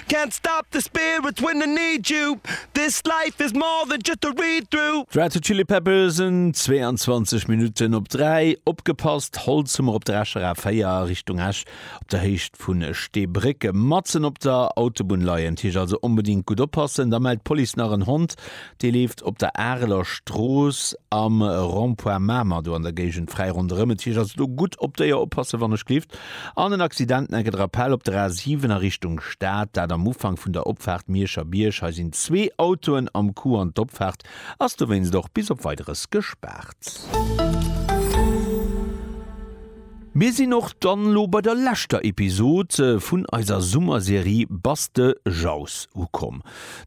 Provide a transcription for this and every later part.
Can't stop the spirit when I need you This life is more than just a read through. D'Red Hot Chili Peppers en 22 Minutten op 3, opgepasst, Holzhummer op der Escher A 4 a Richtung Esch op der Héicht vu Steebrécke matzen op der Autobunn leien. T-Iech also onbedingt gutt oppassen, da mellt d'Police nach en Hond Dee leeft op der Areler Strooss am Rond-point Mamer, do an der Géigend, fräi ronderëm. Et heescht also do gutt op d'Déier oppassen, wannechgelift. An en Accident nennt et Rappel op der A 7 a Richtung Stad, dat am Ufank vun der Opfaart Mierscher Bierg. Hei sinn zwee Autoen am Coup an d'Opfaart ass dowéinst och bis op Weideres gespaart. Mir sinn och dann elo bei der leschter Episod vun eiser Summerserie Bass de Jauss ukomm.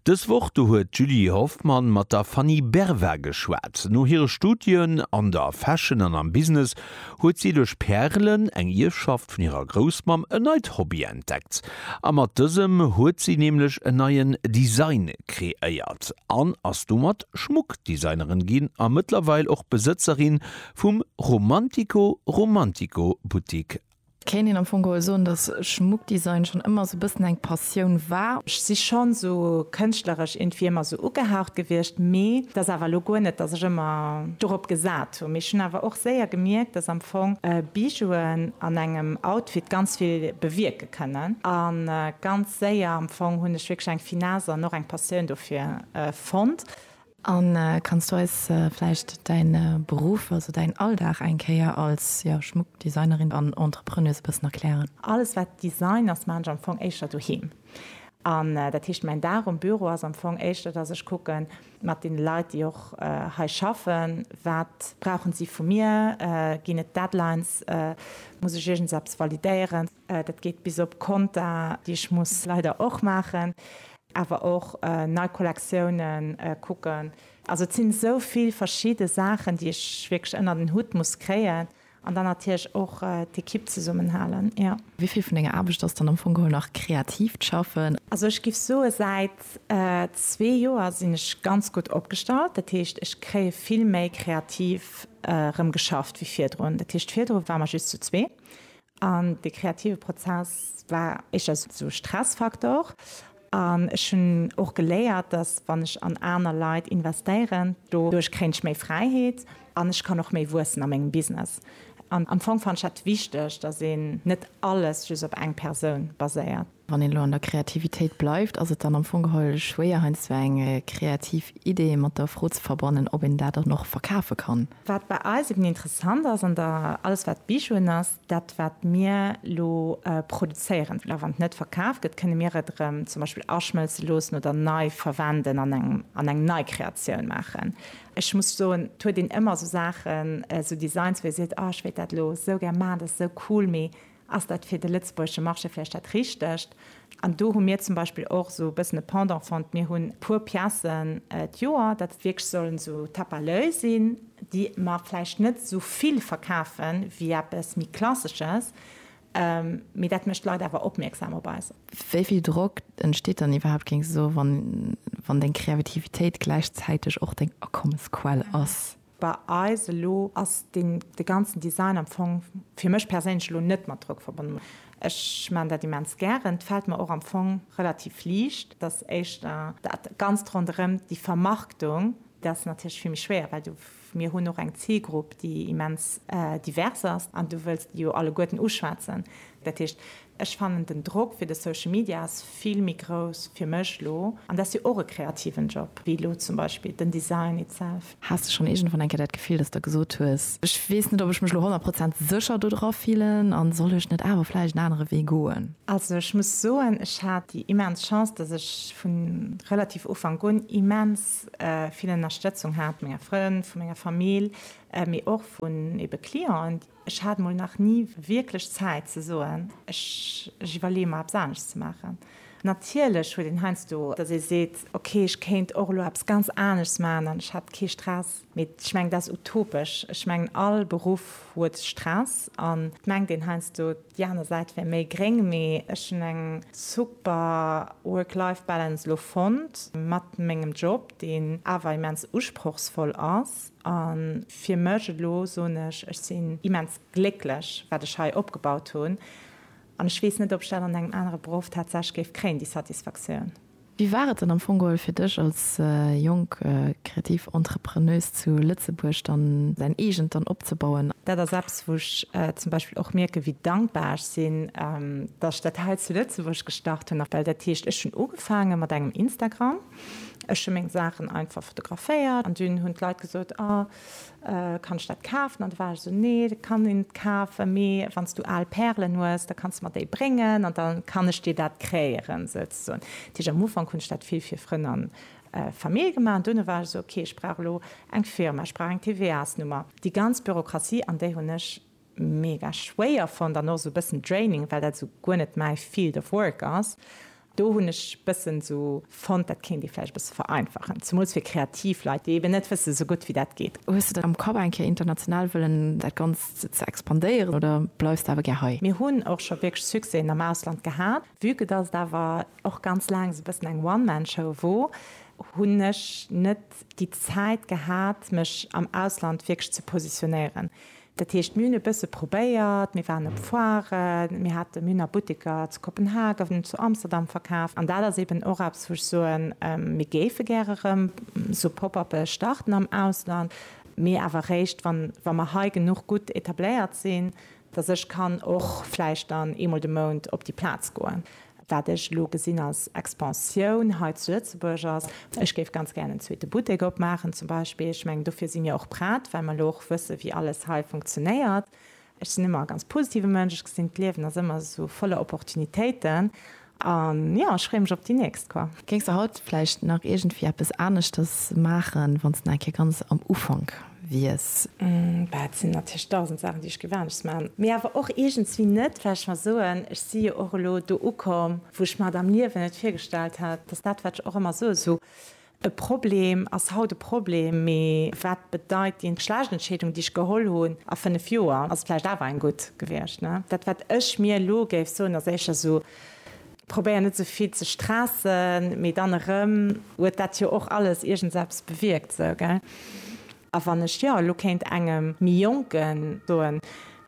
Dës Woch do huet d'Julie Hoffmann mat der Fanny Berva geschwat. No hire Studien an der Fashion an am Business huet si duerch Pärelen, eng Ierfschaft vun hirer Groussmamm, en neit Hobby entdeckt. A mat dësem huet si nämlech en neien Design kreéiert an ass domat Schmuckdesignerin ginn a mëttlerweil och Besëtzerin vum Romantico Romantico Boutique Kéint een am Fong geholl soen, dass Schmuckdesign schonn ëmmer esou e bëssen eng Passioun war? Ech si schonn esou kënschtleresch iergendwéi ëmmer esou ugehaucht gewiescht, mee et ass awer elo guer net, dass ech ëmmer dorop gesat hunn. Mee ech hunn awer och séier gemierkt, dass am Fong Bijouen an engem Outfit ganz vill bewierke kënnen. A ganz séier am Fong hunn ech wierklech eng Finesse an och eng Passioun dofir fonnt. An kanns du eis vläicht däin Beruff, also däin Alldag eng Kéier als Schmuckdesignerin an Entrepreneuse e bëssen erklären? Alles wat Design ass, maan ech am Fong éischter doheem. An dat heescht mäin Dag um Büro ass am Fong éischter dass ech kucken mat den Leit déi och hei schaffen, wat brauchen si vu mir? Ginn et Deadlines? Muss ech iergendeppes validéieren? Dat geet bis op Konta, déi ech muss leider och maachen, awer och nei Kollektiounen kucken. Also et sinn esou vill verschidde Saachen, déi ech wierklech ënner den Hutt muss kréien an dann natierlech och d'Ekipp zesummenhalen, jo. Wéi vill vun denger Aarbecht ass dann am Fong geholl nach kreatiivt Schaffen? Also ech géif soen, säit zwee Joer sinn ech ganz gutt opgestallt. Dat heescht, ech kréie vill méi kreativ erëm geschafft wéi virdrun. Dat heescht, virdru ware mer just zu zwee. An dee kreative Prozess war éischter sou Stressfaktor. An ech hunn och geléiert, dass wann ech an aner Leit investéieren, doduerch kréien ech méi Fräiheet an ech kann och méi wuessen a mengem Business. An am Fong fannen ech dat wichteg, dass een net alles just op eng Persoun baséiert. Wann een elo an der Kreativitéit bleift, ass et dann am Fong geholl schwéier heiansdo eng kreativ Idee mat der Fro ze verbannen, ob een dat dann och verkafe kann? Wat bei eis eben interessant ass an der alles wat Bijouen ass, dat wat mir elo produzéieren, well och wann et net verkaf gëtt, kënne mir et erëm zum Beispill aschmëlze loossen oder nei verwenden an engem an eng nei Kreatioun maachen. Ech muss soen, et huet een ëmmer esou Saachen, esou Designs, wou ee seet, oh ech wéilt dat elo esou gär maachen, dat ass esou cool, mee Ass dat fir de lëtzebuergesche Marché vläicht dat Richtegt? An do hu mir zum Beispill och esou e bëssen e Pendant fonnt. Mir hunn e puer Piècen d'Joer, dat. Wierklech sollen esou Tape à l'oeil sinn, déi mer vläicht net esou vill verkafe wéi eppes méi Klassesches, mee dat mécht d'Leit awer opmierksam op eis. Wéi vill Drock entsteet dann iwwerhaapt, géing se soen, wann deng Kreavitivitéit gläichzäiteg och deng Akommesquell ass? Bei eis elo ass de ganzen Design am Fong fir mech perséinlech elo net mat Drock verbonnen. Ech maan dat immens gären. Et fällt mer och am Fong relativ liicht. Dass éischter dat ganzt ronderem déi Vermarktung, dat ass natierlech vill méi schwéier, well du, mir hunn och eng Zilgrupp déi immens divers ass an du wëlls déi jo alleguerten uschwätzen. Dat heescht, Ech fannen den Drock fir de Social Media ass vill méi grouss fir mech lo, an dat ass jo och e kreativen Job, wéi lo zum Beispill den Design itself. Has de schonn iergendwann eng Kéier dat Gefill, dass de gesot hues, Ech weess net, ob ech mech lo honnert Prozent sécher do dra fillen, a soll ech net awer vläicht en anere Wee goen? Also ech muss soen, ech hat déi immens Chance, dass ech vu relativ Ufank un immens vill Ënnerstëtzung hat, menger Frënn, vu menger Famill, mee och vun ebe Clienten, Ech hat mol nach ni wierklech Zäit ze soen, ech iwwerleeë mer eppes anescht ze maachen. Natierlech huet een heiansdo, datt ee seet, ok, ech kéint och elo eppes ganz aneschts maachen an ech hätt kee Stress. Mee ech mengen, dat ass utopesch. Ech mengen, all Beruff huet Stress an et mengt een heiansdo, déi aner Säit wär méi gréng. Mee ech hunn eng super Work-Life-Balance elo fonnt mat mengem Job, deen awer immens usprochsvoll ass. A fir mech elo soen ech, ech sinn immens glécklech, wat ech hei opgebaut hunn. An ech weess net, ob ech dat an engem anere Beruff tatsächlech géif kréien, déi Satisfaktioun. Wéi war et dann am Fong geholl fir dech als jonk kreativ Entrepreneuse zu Lëtzebuerg dann säin eegent dann opzebauen? Dat ass eppes, wou ech zum Beispill och mierken, wéi dankbar ech sinn, datt ech dat hei zu Lëtzebuerg gestart hunn. Well dat heescht, ech hunn ugefaange mat engem Instagram. Ech hun meng Saachen einfach fotograféiert an dun hun d'Leit gesot, oh kann ech dat kaafen? An du war ech esou, nee dat kann een net kaafen, mee wanns du aal Pärelen hues da kanns de mer déi bréngen an dann kann ech dir dat kréieren souzesoen. Dat heesch am Ufank hun ech dat vill fir Frënn an Famill gemaach an duerno war ech esou, ok ech brauch elo eng Firma, ech brauch eng TVA-Nummer, déi ganz Bürokratie an déi hun ech. mega schwéier fonnt an och sou bëssen draining well dat sou guer net mäi field of work ass. Do hunn ech bëssen sou fonnt dat kéint ee vläicht e bësse vereinfachen, zemools fir kreativ Leit déi eben net wësse sou gutt wéi dat geet. Hues de dann am Kapp eng Kéier international wëllen dat Ganzt ze expandéieren oder bleifs de awer gär hei? Mir hunn och scho wierklech Succèsen am Ausland gehat. Vue que dass et awer och ganz laang esou bëssen eng One Man Show wor, hunn ech net déi Zäit gehat mech am Ausland wierklech ze positionéieren. Dat heescht, mir hunn e bësse probéiert, mir waren op Foiren, mir hate mir hunn a Butteker zu Kopenhagen, zu Amsterdam verkaaft. An dat ass eeben och eppes, wou ech soen, mir géife gäre erëm esou Pop-uppe starten am Ausland, mee awer eréischt, wann, wa mer hei genuch gutt etabléiert sinn, datt ech kann och vläicht dann eemol de Mount op déi Plaz goen. Wat ech elo gesinn als Expansioun hei zu Lëtzebuerg ass, ech géif ganz gären en zweete Buttek opmaachen zum Beispill. Ech mengen, dofir si mir och prett, well mer elo och wëssen, wéi alles hei funktionéiert. Ech sinn ëmmer e ganz positive Mënsch, ech gesinn, d'Liewen ass ëmmer esou voller Opportunitéiten. An jo, ech freeë mech op déi nächst, quoi. Géings de haut vläicht nach iergendwéi eppes aneschters maachen, wann s de nach eng Kéier ganz am Ufank wies. Bah, et sinn natierlech dausend Saachen, déi ech géif anescht maachen, mee awer och iergendswéi net, well ech mer soen, ech si jo och elo do ukomm, wou ech mer et am Liewen net virgestallt hätt, dass dat, wat ech och ëmmer soe, sou e Problem ass haut e Problem, mee wat bedeit déi schlecht Entscheedung, déi ech geholl hunn a fënnef Joer, ass et vläicht awer eng gutt gewiescht, ne? Dat, wat ech mir elo géif soen, ass éischter sou, Probéier net sou vill ze stressen, mee dann erëm huet dat jo och alles iergendseppes bewierkt, sou, gell? A wann ech jo elo kéint engem méi Jonken soen,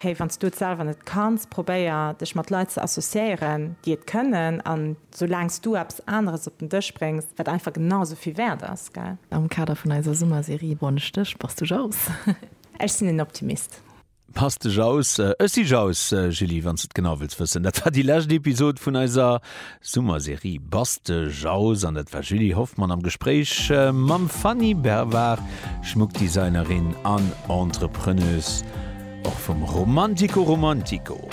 Hey, wann s du et selwer net kanns, probéier dech mat Leit ze associéieren, déi et kënnen, an soulaang s du eppes aneres op den Dësch bréngs, wat einfach genau sou vill wäert ass, gell? Am Kader vun eiser Summerserie Bonne Stech, bass du jaloux? Ech sinn en Optimist. Pass dech aus, ech si Jaus. Julie, wann s de et genau wëlls wëssen, dat war déi lescht Episod vun eiser Summerserie Bass de Jaus an dat war d'Julie Hoffmann am Gespréich mam Fanny Bervard, Schmuckdesignerin an Entrepreneuse, och vum Romantico Romantico.